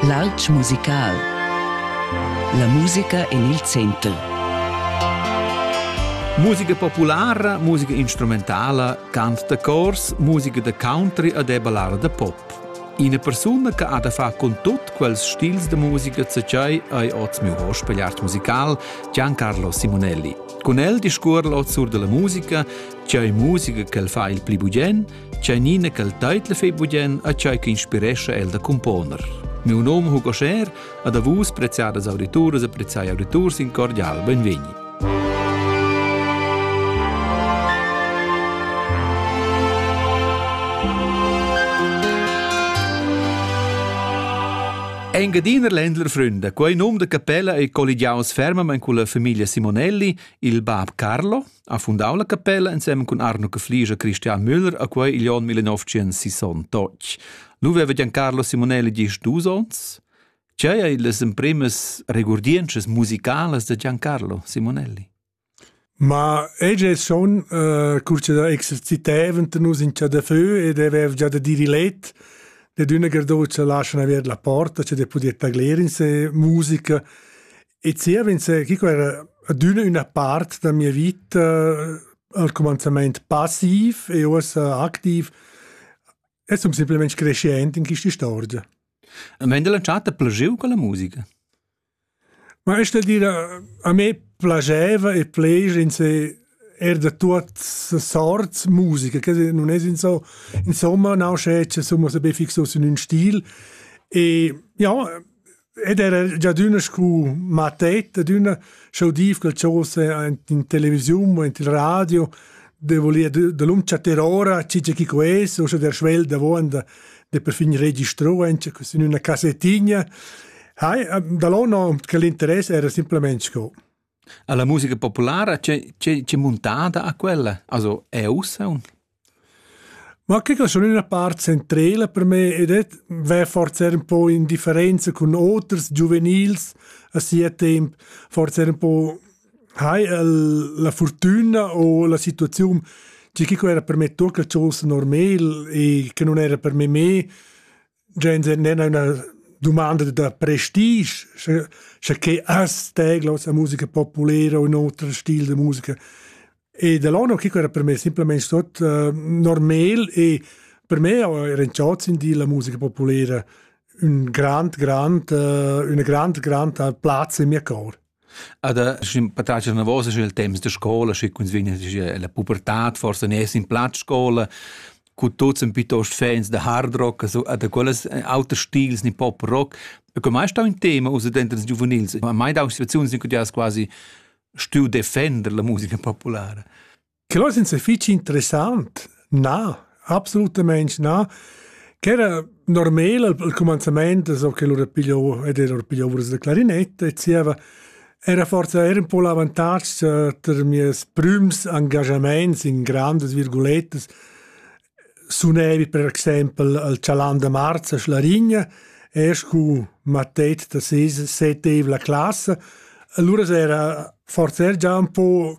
L'alp musical. La musica en il center. Musica populara, musica instrumentala, cant da cors, musica da country ed è ballada da pop. Ina persuna che ha da far con tut quels stils de musica tschai hai oz miu hospigliart musical Giancarlo Simonelli. Con el discuor l'oz sur della musica, tschai musica che el fa il pli bugen, Tscheinina ch'el teitla fei bugien a tschei che inspirescha el da componer. Miu nom Hugo Scher, ad a vus preziadas audituras e preziai auditurs in cordial benvegni. Engadiner Ländler Fründe, quei num de capella ei colligiaus fermament con la famiglia Simonelli, il bab Carlo, Ha fundau la capella ensem cun Arno Cafliger e Christian Müller a quei igl onn 1968. Nu veva Giancarlo Simonelli gist dus onns? Tgei ei las emprimas regurdientschas musicalas da Giancarlo Simonelli? Ma ege son uh, curce da exerciteven nus in cha da feu ed avev già da dir let de d'una gardocia lascian aver la porta, che de podia tagler in se musica E ziev'inse, chi quera adüna üna part da mia vita al cumanzamaint passiv e uossa activ e sun simplamaing crescient in quista istorgia. A Mendel cha t'ha plagieu con la musica? Ma es da dire, a me plagieva e plager in se er da tuot sorts musica, che non es in so, insomma, nausce, che somma se be fixos in un stil. E ja, ed era già d'una scu mattet ed una schau dir quel chose in televisiun o in il radio de volia de l'um chattar ora chi chi ques o sche der schwel da vonda de per fin registro en in una cassettigna hai da l'ono che l'interesse era simplemente sco alla musica populara c'è c'è c'è montada a quella also è ussa un Ma che que sun üna part centrela per me ed het vè forsa er ün po in differenza cun oters giuvenils a sia temp. Forsa er ün po hai el la furtüna o la situaziun, tgi che quo era per me tuot quel tschels normel e che nun era per me mê. Gens n'en üna dumanda da prestige, sche, sche che as teglos a musica populera o in oter stil de musica. E da l'anno chi era per me simplemente sot uh, normal e per me era in ciot in di la musica populera un grand grand uh, una grand grand plazza in mia cor. Ad sch'ün patratg anavos scu i'l temps da scoula, schi quins vegnan a la pubertad forsa neir in plat scoula, cu tuots sun pietost fans da hard rock, also da quellas auters stils, nin pop rock. E que mai stau ün tema ussa denter ils giuvenils, a mai dau situaziuns in cui ti hast quasi stüu defender la musica populara. Que ais ins fich interessant. Na, absolutamaing na. Ch'era normal al cumanzamaint, so che lur pigliou ed era pigliovras da clarinetta e zieva era forsa era un po l'avantatg eh, ter mies prüms engagamaints in grandas virgulettas sunevi per exempel al Chalan da Marz a Schlarigna, erst cu mattet da setev la classa, allura era forsa era già un po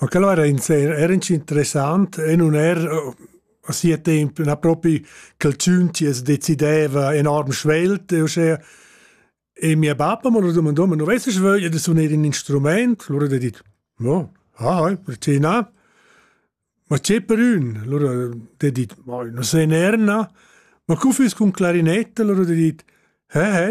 Ma quel era inser era interessant e nun era a sia temp na propi ch'el tschun chi as decideva enorm svelt e uschea. E mia bappa m'ha lura dumandà, ma nu vest schi vögl da suner ün instrumaint? Lura d'he dit, no, ah, perché na? Ma che per ün? Lura d'he dit, ma nu se ner, na. Ma cu füss cun clarinetta? Lura d'he dit, he, he.